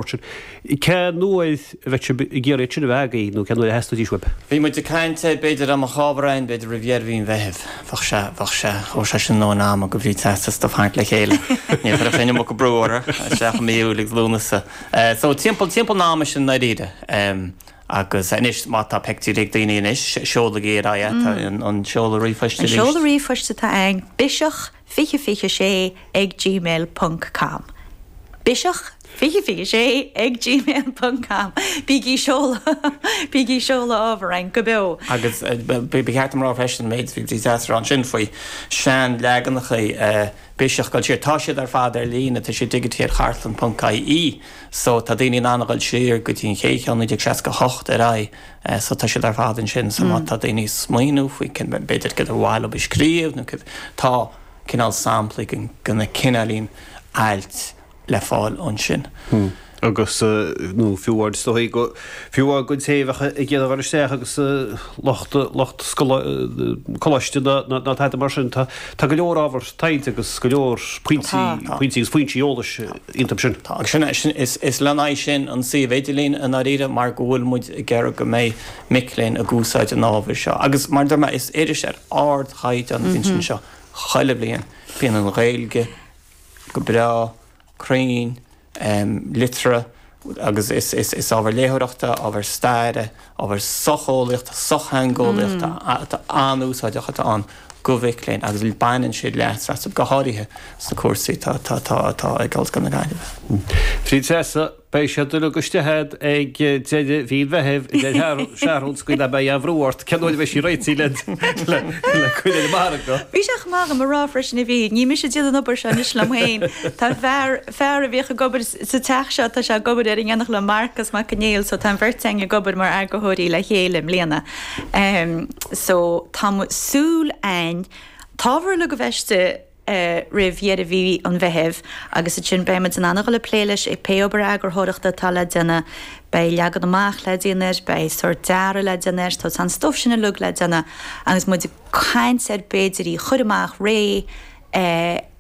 Cén uair a bheidh sibh ag iarraidh sin a bheith agaibh nó cén uair a theastaíonn sé uaibh? Bhí muid ag caint air, b'fhéidir am an Chábharáin, b'fhéidir roimh dheireadh mhí an Mheithimh. Bheadh sé, bheadh sé, thabharfadh sé sin dóthain ama go bhféadfadh Treasa stuif tharraingt le chéile. Ní chuirfeadh sé an iomarca brú orthu, isteach i mí Iúil agus Lúnasa. So timpeall, timpeall an ama sin i ndáiríre. Agus anois má tá pictiúirí ag daoine anois, seolaigí ar aghaidh é, tá an seoladh ríomhphoist ar. An seoladh ríomhphoist atá ann, biseach. 20 20 6 ag gmail ponc com biseach 20 20 6 ag gmail ponc com Bígí seoladh Bígí seoladh ábhar chugainn go beo! Agus ba cheart dom rá freisin, maidir leis an tsraith sin faoi sean leaganacha biseach dul siar. Tá siad ar fad ar líne, tá siad digitithe ar chartlann ponc ie so tá daoine in ann a dhul siar go dtí an chéad cheann 1968 ar aghaidh So tá siad ar fad ansin. So má tá daoine ag smaoineamh faoi céard, b'fhéidir céard ab mhaith leob a scríobh nó céard, tá cineál samplaí de na cineálacha ailt le fáil ansin. Agus, nó fiú amháin is dóigh go, fiú amháin go dtí an mhac léinn ag iarraidh a gcur isteach agus lucht, lucht coláiste nó tada mar sin. Tá, tá go leor ábhar taighde agus go leor pointí, pointí agus foinsí eolais. iontu sin. Tá, agus sin, is le haghaidh sin an suíomh idirlín i ndáiríre mar go bhfuil muid ag iarraidh go mbeidh mic léinn ag úsáid an ábhair seo. Agus mar a deir mé, is iris ar ardchaighdeán a bhíonn anseo chuile bhliain. Bíonn an Ghaeilge go breá, cruinn, liteartha. agus is ábhar léitheoireachta, ábhar staire, ábhar socheolaíochta, sochtheangeolaíochta atá an-úsáideach atá ann do mhic léinn agus baineann siad leas as go háirithe sna cúrsaí atá ag Ollscoil na Gaillimhe. Bhuel a Threasa, beidh siad uilig istigh agat ag deireadh mhí an Mheithimh, a deir Seathrún, níl mé ag cur brú ort, cén uair a bheidh sí réití le cur ar an margadh? Bheadh sé chomh maith agam a rá freisin a Bhríd, ní mise a dhéanann an obair seo anois liom fhéin, tá fear, fear a bhíodh ag obair sa teach seo, tá sé ag obair ar an déanach le Marcas Mac an Néill so tá an bheirt againn ag obair mar eagarthóirí le chéile i mbliana so tá muid ag súil an t-ábhar uilig a bheith istigh roimh dheireadh mhí an Mheithimh agus ansin beidh muid in ann a dhul ag plé leis agus pé obair eagarthóireachta atá le déanamh, beidh leagan amach le déanamh air, beidh sórt dearadh le déanamh air so tá an stuif sin uilig le déanamh agus muid ag caint ar b'fhéidir í a chur amach réidh eh.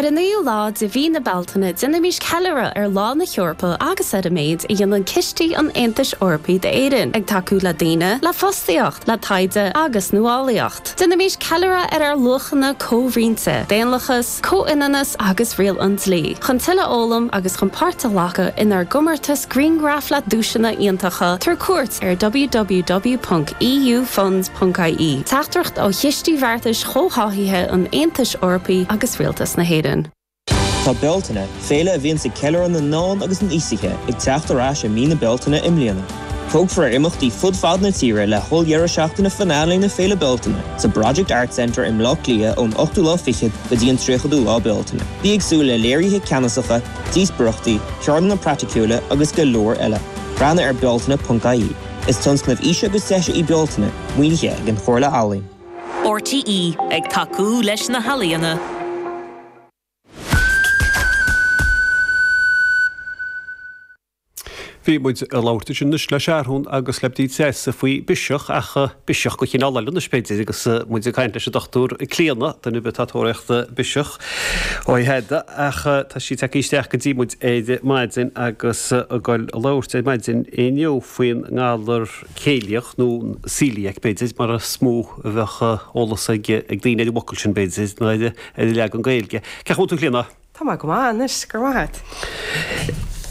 Ar an 9ú lá de mhí na Bealtaine déanaimís ceiliúradh ar Lá na hEorpa agus ar an méid a dhéanann cistí an Aontais Eorpaigh d'Éirinn, ag tacú le daoine, le fostaíocht, le taighde agus nuálaíocht. Déanaimís ceiliúradh ar ár luachanna comhroinnte, daonlathas, Comhionannas agus Riail an Dlí, chun tuilleadh a fhoghlaim agus chun páirt a ghlacadh inár gcomórtas grianghraf le duaiseanna iontacha tabhair cuairt ar www.eufunds.ie, teachtaireacht ó Chistí Bheartais Chomhtháthaithe an Aontais Eorpaigh agus Rialtas na hÉireann. Tá Bealtaine, féile a bhíonns ag ceiliúradh na n-ealaíon agus an aosaithe, ag teacht ar ais i mí na Bealtaine i mbliana. Tógfar ar imeachtaí fud fad na tíre le holl-deireadh seachtaine finale na Féile Bealtaine sa Project Arts Centre i mBleá Cliath ón 8ú lá fichead go dtí an 30ú lá Bealtaine. Bí ag súil le léirithe ceannasacha, díospóireachtaí, ceardlanna praiticiúla agus go leor eile. Breathnaigh ar bealtaine.ie. Is tionscnamh aoise agus deise í Bealtaine, maoinithe ag an Chomhairle Ealaíon. RTÉ ag tacú leis na healaíona. Bhí muid ag labhairt ansin anois le Searthún agus le Bdí Treasa faoi biseach ach biseach de chineál eile anois b'fhéidir agus muid ag caint leis an Dr Clíona, duine ar bith atá ag tóraíocht biseach uaithi ach tá sí tagtha isteach go dtí muid ar maidin agus ag goil ag labhairt ar maidin inniu faoin ngalar céiliach nó coeliac b'fhéidir mar is mó a bheadh eolas ag daoine ar an bhfocal sin b'fhéidir, ná ar an leagan Gaeilge. Cén chaoi a bhfuil tú a Chlíona. Tá mé go maith anois, go raibh maith a't.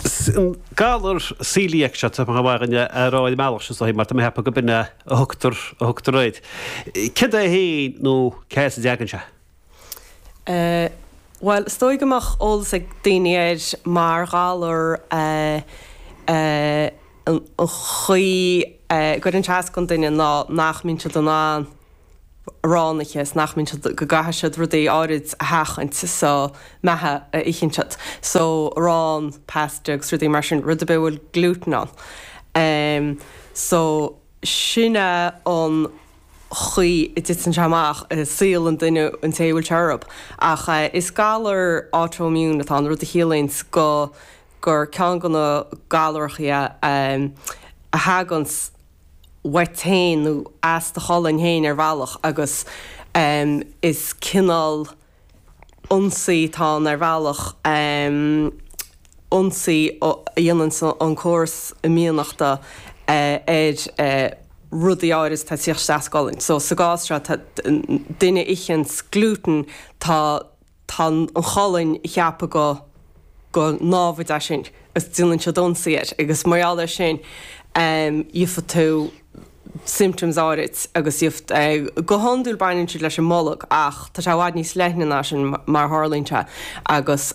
Sin galar coeliac seo, tá sé chomh maith againn é a rá ar an mbealach sin, mar tá mé ag ceapadh gurb in a thugtar a thugtar air. Céard é fhéin nó cé as a dtagann sé? Bhuel, is dóigh go mbeadh eolas ag daoine air mar ghalar an chaoi a gcuireann sé as don duine ná nach mbíonn siad in ann, arán a ithe is nach mbíonn siad, go gcaithfidh siad rudaí áirid a sheachaint sa méid a itheann siad. So arán, pasta agus rudaí mar sin, rud ar bith a bhfuil glútan ann. Em so sin é an chaoi a dtiteann sé amach i saol an duine, an té a bhfuil sé orthu. Ach eh is galar autoimmune atá ann, rud a chiallaíonn go gur ceann de na galrachaí a em a thaganns, uait féin nó as do cholainn féin ar bhealach agus is cineál ionsaí atá ann ar bhealach, ionsaí a dhéananns an córas imdhíonachta ar rudaí áirid atá ag tíocht isteach sa gcolainn. So sa gcás seo tá duine ag ithe an ghlútain tá. Tá an cholainn ag ceapadh gur, gur námhaid é sin agus déanann siad ionsaí air agus mar gheall air sin gheobhaidh tú symptoms áirid agus gheobhaidh, go hiondúil baineann siad leis an mbolg ach tá sé i bhfad níos leithne ná sin mar a tharlaíonn sé agus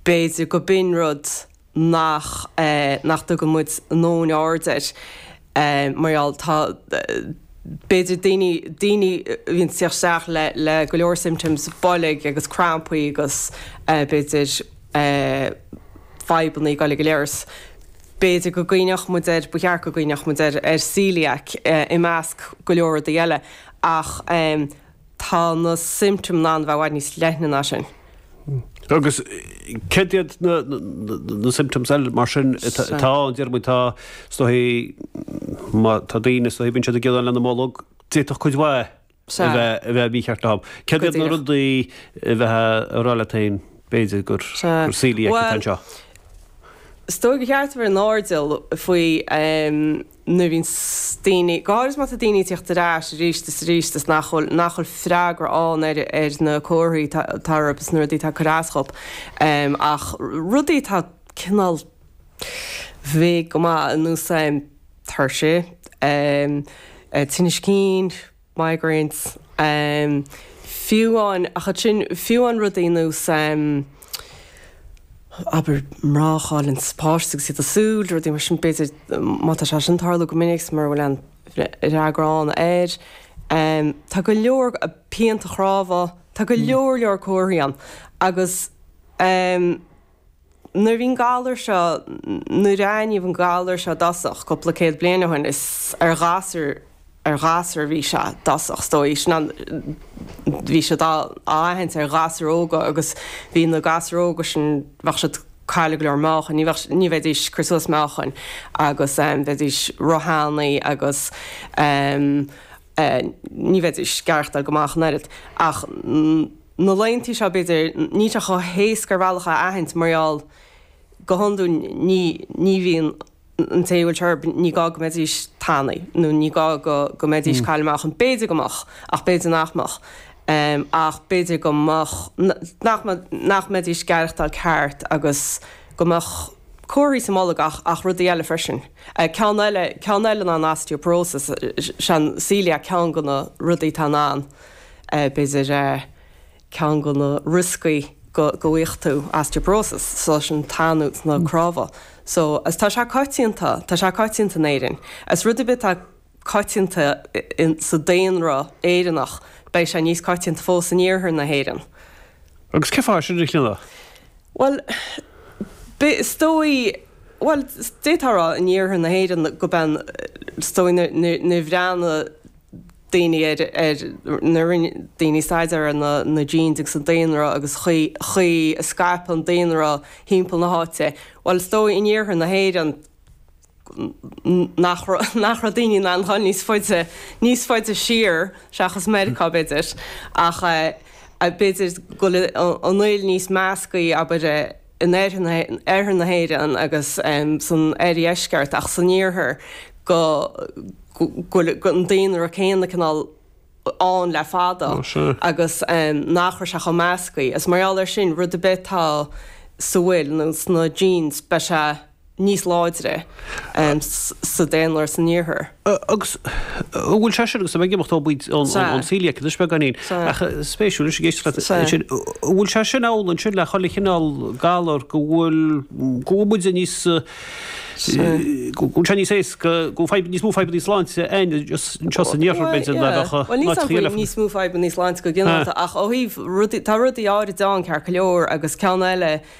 b'fhéidir gurb in rud nach nach dtugann muid a ndóthain aird air mar gheall tá b'fhéidir daoine daoine a bhíonns ag tíocht isteach le le go leor symptoms boilg agus crampaí agus b'fhéidir fadhbanna ag goil ag an leithreas b'fhéidir go gcuimhneodh muid air ba cheart go gcuimhneodh muid air ar coeliac i measc go leor rudaí eile ach Tá na symptoms in ann a bheith i bhfad níos leithne ná sin. Agus céard iad na symptoms eile mar sin atá ann, deir muid tá is dóichí má tá daoine is bíonn siad ag gearán lena mbolg, d'fhéadfadh cuid mhaith a Sea. bheith a bheith mícheart ann. Céard Go iad na díreach. rudaí a bheadh ag rá leat féin b'fhéidir gur Sea. gur coeliac é Well- anseo. Is dóigh gur cheart a bheith in airdeall faoi em, nuair a bhíonn daoine, go háirid má tá daoine ag tíocht ar ais arís is arís is nach bhfuil, nach bhfuil freagra ann ar, ar na comharthaí tá, tá orthu is na rudaí tá ag cur as dhóibh, ach rudaí atá cineál vague go maith, ar nós, tuirse, tinneas cinn, migraines. Fiú amháin, ach ansin, fiú amháin rudaí ar nós, abair, mná a chailleanns páiste agus iad ag súil, rudaí mar sin, b'fhéidir, má tá sé sin ag tarlú go minic, mura bhfuil aon fhreagra ann air. Tá go leor pianta cnámha, tá go leor leor comharthaí ann agus. Nuair a bhí an galar seo, nuair a aithníodh an galar seo i dtosach, cúpla céad bliain ó shin, is ar ghasúir, ar ghasúir a bhí sé i dtosach, is dóigh. Sin an, bhí siad á, á aithint ar ghasúir óga agus bhí na gasúir óga sin, bheadh siad ag cailleadh go leor meáchain, ní bheadh, ní bheidís, ag cur suas meáchain agus bheidís ró-thanaí agus ní bheidís ag aireachtáil go maith ach an oiread. Ach. na laetheanntaí seo b'fhéidir, níl sé chomh héasca ar bhealach é a aithint mar gheall go hiondúil ní ní bhíonn an té a bhfuil sé air ní gá go mbeidís tanaí nó ní gá go go mbeidís ag cailleadh meáchain b'fhéidir go mbeadh ach b'fhéidir nach mbeadh ach b'fhéidir go mbeadh nach nach mbeidís ag aireachtáil ceart agus go mbeadh comharthaí sa mbolg ach ach rudaí eile freisin a ceann eile ceann eile ná an osteoporosis is é an coeliac ceann de na rudaí tá in ann b'fhéidir ceann de na rioscaí go bhfuigheadh tú osteoporosis so sin tanú sna crámha so is tá sé coitianta tá sé coitianta in Éirinn is rud ar bith atá coitianta in sa daonra Éireannach beidh sé níos coitianta fós in iarthar na hÉireann. Agus cén fáth sin a chinneadh? Bhuel b'fhé is dóigh bhuel d'fhéadfá a rá in iarthar na hÉireann go bean is dóigh na na bhreathnaigh daoine ar, ar, na rinne, daoine staidéar ar na, na genes agus an daonra agus chaoi, chaoi a scaip an daonra timpeall na háite. Bhuel is dóigh in iarthar na hÉireann nach raibh, nach raibh daoine in ann dul níos faide, níos faide siar seachas Meiriceá b'fhéidir ach, eh, b'fhéidir go, an fhuil níos measctha abair, eh, in oirthear na hÉireann agus san oirdheisceart ach san iarthar go bhfuil an daonra céanna cineál ann le fada agus nach raibh sé chomh measctha. Is mar gheall air sin rud ar bith atá sa bhfuil nó sna genes beidh sé. níos láidre sa daonra san iarthar. Agus an bhfuil sé sin, agus tá mé ag imeacht ó, b'fhéidir, ón coeliac anois beagáinín, ach spéisiúil anois ag éisteacht leat ansin, an bhfuil sé sin amhlaidh ansin le chuile chineál galar go bhfuil, go bhfuil muide níos, go bhfuil sé níos éasca, go bhfuil fadhb, níos mó fadhbanna sláinte ann anseo san iarthar b'fhéidir ná a bheadh i nGaillimh? Ní nach bhfuil níos mó fadhbanna sláinte go ginearálta ach ó thaobh rudaí, tá rudaí áirid ann, ceart go leor agus ceann eile